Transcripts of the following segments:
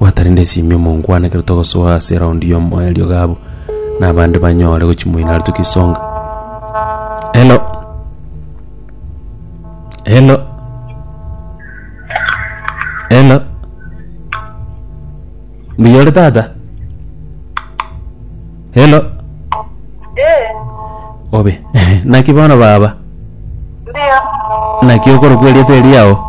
Gwatarende esimi omonkwana ekero togosoa ase eraundi ya omoerio gabo na abande banyore gochimoina are tukisonga. Hello. Hello. Hello. Mbuya ore tata? Hello. Eh, Obe. Naki bono baba. ndio. Naki okorokwa erieta eriao.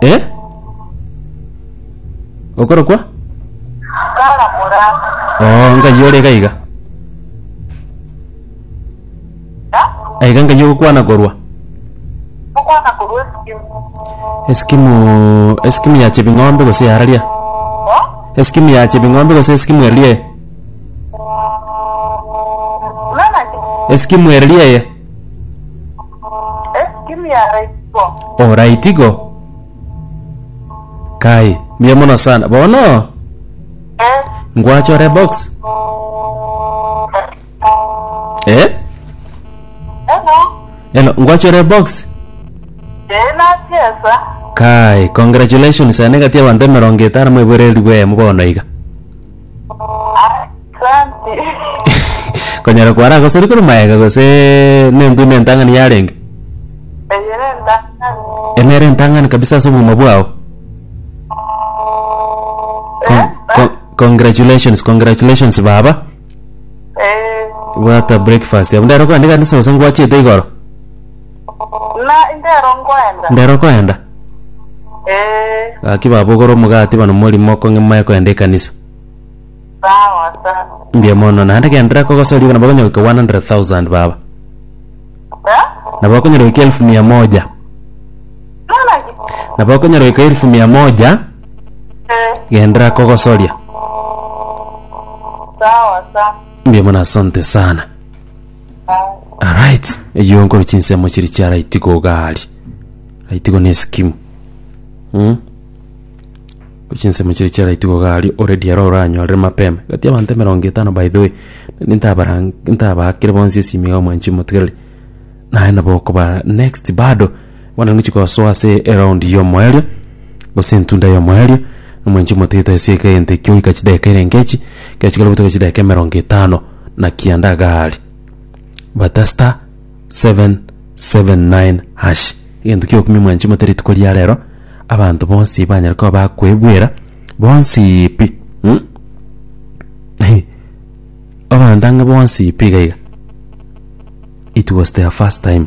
Eh? Okorokwa? Oh, ngai ore iga iga. Aiga ngai ogokwana korwa. Eskimu eskimu ya chebing'ombe gose yararia. Eskimu ya chebing'ombe gose eskimu erie. Eskimu erie. Ekimi araitigo. Oraitigo? Kai, mbuya mono sana. Bono, Eh, ngwachore box. Eh? hello. Hello, ngwachore box. Eh, nasiesa. Kai, congratulations, ane gati abanto emerongo etano moiboreri bwemo bono iga. Asante. konyara kwara gosori kore maega gose nentwe nentang'ani yarenge Eyere ndakani. enere entang'ani kabisa ase obogima bwao Con- con- congratulations congratulations baba Eh, bwata breakfast abundu ero kwandika nise gose ngwachete igoro Na indero nkoenda. Ndero okoenda? Ee, Gaki babogora omogati bana omorimo okong'e moe koenda ekanisa. sawa sa. Mbuya mono, naende genderera kogosoria iga nabo okonyora goika 100,000 baba. Eh? Nabo okonyora goika elfu mia moja. Nona ki? Nabo okonyora goika elfu mia moja Eh, genderera kogosoria. sawa sa. Mbuya mono asante sana. Alright, eyo nkoro chinsemo chiri chia raitigo iga aria. Raitigo ne skimu. Mm. Chinsemo chiri chia raitigo iga aria already aro oranyorere mapema. Gati abanto emerongo etano by the way. Nintabara ntabakire bonsi esimi iga mwanchi motigereri. Naye nabo okoba next bado Bono ningochia gosoa ase eround y'omoerio, gose entunda y'omoerio, na omwanchi omoteete ase egeka egento ekio goika chidakika ere nkechi, ekero chikare gotoka chidakika emerongo etano, naki ande agaari bata star, seven, seven, nine, hash, egento kia okumia omwanchi omote rituko ria rero, abanto bonsi banyare koba bakoebwera bonsiii pi mh, hi, abanto ang'e bonsi pi iga iga, it was their first time.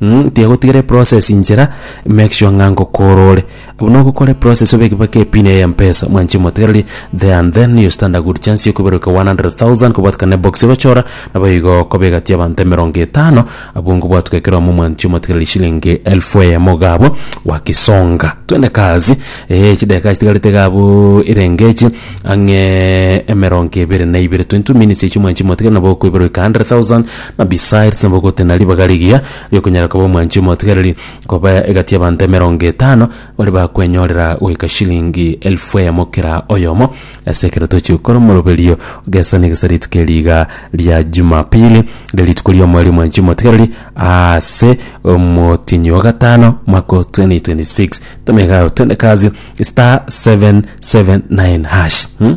Mh, tiagotigera eprocess inchera, make sure ng'a ngokora ore. Buna ogokora eprocess obeke mpaka epin yaye ya mpesa, mwanche motegereri, there and then you stand a good chance ya okoibaruka 100,000 kobwatikana na ebox ogochora, nabo igo okoba egati y'abanto emerongo etano, abwo ngobwatuka ekeromo mwanche omotegereri shilingi elfu eyemo iga abwo, gwagisonga. Twende kazi, eeh chidakika chitigarete iga abwo erenge echi, ang'ee emerongo ebere na ibere, 22 minutes echio mwanchi motegereri nabo okoibaruka 100,000, Abisai risambogote na ribaga rigiya ri'okonyara koba omwanchi omotigareri, koba egati y'abanto emerongo etano baria bakwenyorera goika shilingi elfu eyemo kera oyomo ase ekero tochia gokora omoroberio gesani egesa rituko eri iga ria Jumapili, riria rituko ri'omweri omwanchi omotigareri aase omotienyi o gatano omwaka o 2026. Toma iga aye otende kazi *779#.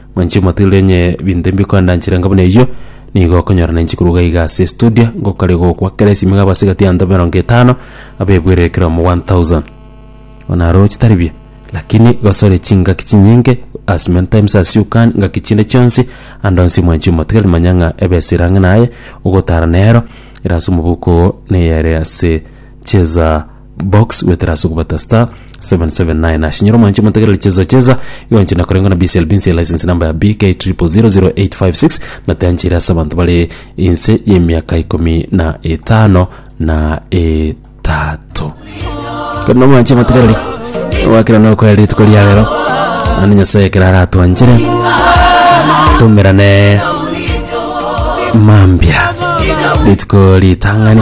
Mwanche motiirire onye binto ebi bikondanchera inga buna eyio, nigo okonyora nainche korwa iga iga ase estudio, ngokaria gokwa kera esimi iga abase egati y'abanto emerongo etano, abebwerire kera omo 1000. Bono aro chitari biya, lakini gosore chingaki chinyinge as many times as you can, ngaki chinde chionsi, ande onsi mwanchi omotigereri manya ng'a ebesire ang'e naye, ogotara nero, ere ase omobuko oo, neyere ase chieza. box gwetera ase okobata star 779 hash nyoro mwanche motegerere cheza cheza iwanche na korengwa na BCL BNC license number ya BK 000856 na teanchire ase abanto bare inse y'emiaka ikomi na etano na etato kono mwanche motegerere wakera na okwera rituko ria rero ande nyasaye ekero aratwanchire tumerane mambia rituko ritang'ani